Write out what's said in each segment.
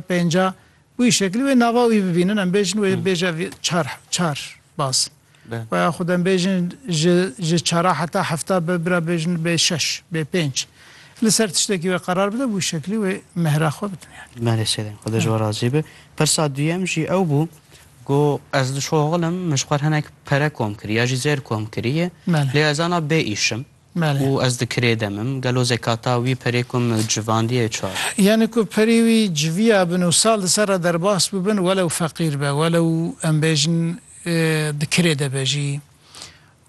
pênca û wî şekilî wê nava wî bibînin em bêjin wê bêje vî çar çar baz we ya xwed em bêjin ji ji çara heta hefta be bira bêjin bê şeş bê pênc li ser tiştekî wê qerar bide bi wî şekilî wê mehra xwe bidin yani. Malê sêrên xwe de ji we razî be. Pirsa duyem jî ew bû ku ez dişoxilim min ji xwe re hinek pere kom kirî ya jî zêr kom kirî ye lê ez ana bê îşim Û ez di kirê de mim. Gelo zekata wî perê ku min civandiye çar. Yanî ku perê wî civiya bin û sal di ser re derbas bibin welew feqîr be, welew em bêjin di kirê de be jî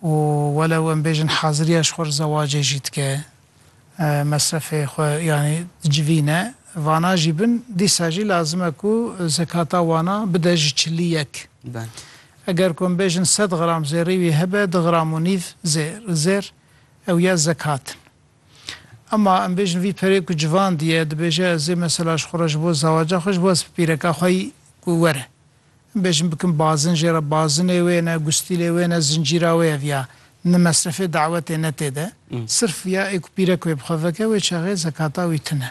û welew em bêjin haziriya ji xwe re zewacê jî dike, mesrefê xwe yanî dicivîne, vana jî bin, dîsa jî lazim e ku zekata wana bide ji çilî yek. Eger ku em bêjin sed gram zêrî wî hebe du gram û nîv zêr zêr ew ya zekat in. Ema em bêjin vî perê ku civan diye dibêje ez ê mesela ji xwe re ji bo zawaca xwe ji bo ez pîreka xwe yî ku were em bêjin bikim bazin jê re bazinê wê ne gustîlê wê ne zincîra wê ev ya ne mesrefê dawetê ne tê de sirf ya ê ku pîrek wê bi xwe veke wê çaxê zekata wî tune.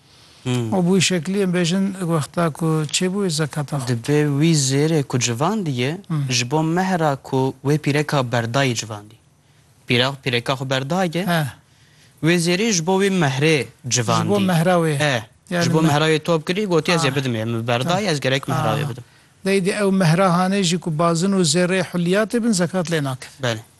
Û bi wî şeklî em bêjin wexta ku çêbûyê zekata xwe. Divê wî zêrê ku civandîyê ji bo mehra ku wê pîreka berdayî civandî. Pîra pîreka xwe berdaye. He. Wê zêrî ji bo wî mehrê civandî. Ji bo mehra wê. E. Ji bo mehra wê top kirî gotî ez ê bidim em min berdaye ez gerek mehra wê bidim. Dayî dê ew mehra hanê jî ku bazin û zêrê huliyatê bin zekat lê nakin. Belê.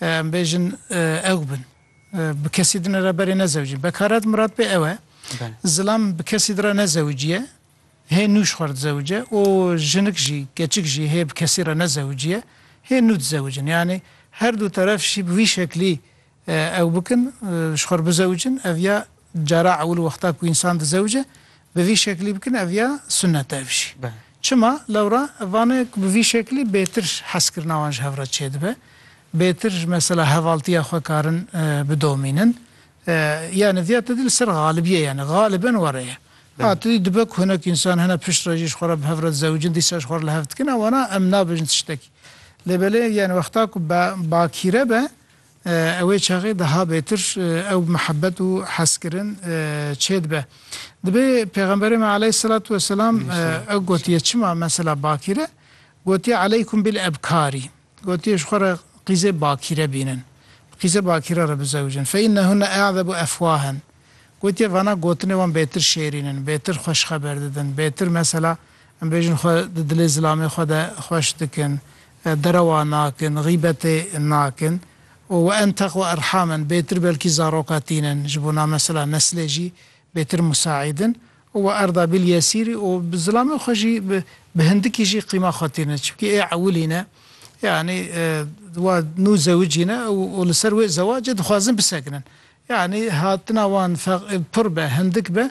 Em bêjin ew bin. Bi kesî din re berê nezewicîn. Bekaret mirad pê ew e. Zilam bi kesî din re nezewiciye. Hê nû ji xwe re dizewice û jinik jî, keçik jî hê bi kesî re nezewiciye. Hê nû dizewicin. Yanî her du teref jî bi vî şeklî ew bikin, ji xwe re bizewicin, ev ya Cara ewil wexta ku însan dizewce bi vî şeklî bikin ev ya sunnet e ev jî. Çima? Lewra ev vane ku bi vî şeklî bêtir hezkirina wan ji hev re çêdibe. Bêtir mesela hevaltiya xwe karin bidomînin. Yanî viya te dî li ser xalibiyê yanî xaliben were ye. A tu dî dibe ku hinek însan hene pişt re jî ji xwe re bi hev re dizewicin dîsa ji xwe re li hev dikin ew wana em nabêjin tiştekî. Lê belê yanî wexta ku bakîre be, Ew ê çaxê daha bêtir ew mihebet û hezkirin çêdibe. Dibê Pêxemberê me aleyhîsselatu weselam ew gotiye çima mesela bakîr e, gotiye aleykum bil ebkarî, gotiye ji xwe re qîzê bakîre bînin, bi qîzê bakîre re bizewicin, fe înnehunne e'zebu efwahen, gotiye vana gotinê wan bêtir şêrîn in, bêtir xweş xeber didin, bêtir mesela em bêjin xwe di dilê zilamê xwe de xweş dikin, Derewa nakin, xîbetê nakin û we enteq û erham in. Bêtir belkî zaroka tînin ji bo na mesela neslê jî bêtir musaîd in û we Erdabîl Yesîrî û bi zilamê xwe jî bi hindikî jî qîma xwe tînin. Çimkî ê ewilî ne yanî wa nû zewicî ne û li ser wê zewacê dixwazin bisekinin. Yanî hatina wan pir be, hindik be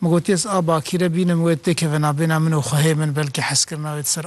Min got, Yez a bakîre bînim wê têkeve nabêhna min û xwehê min belkî hezkirina wê di ser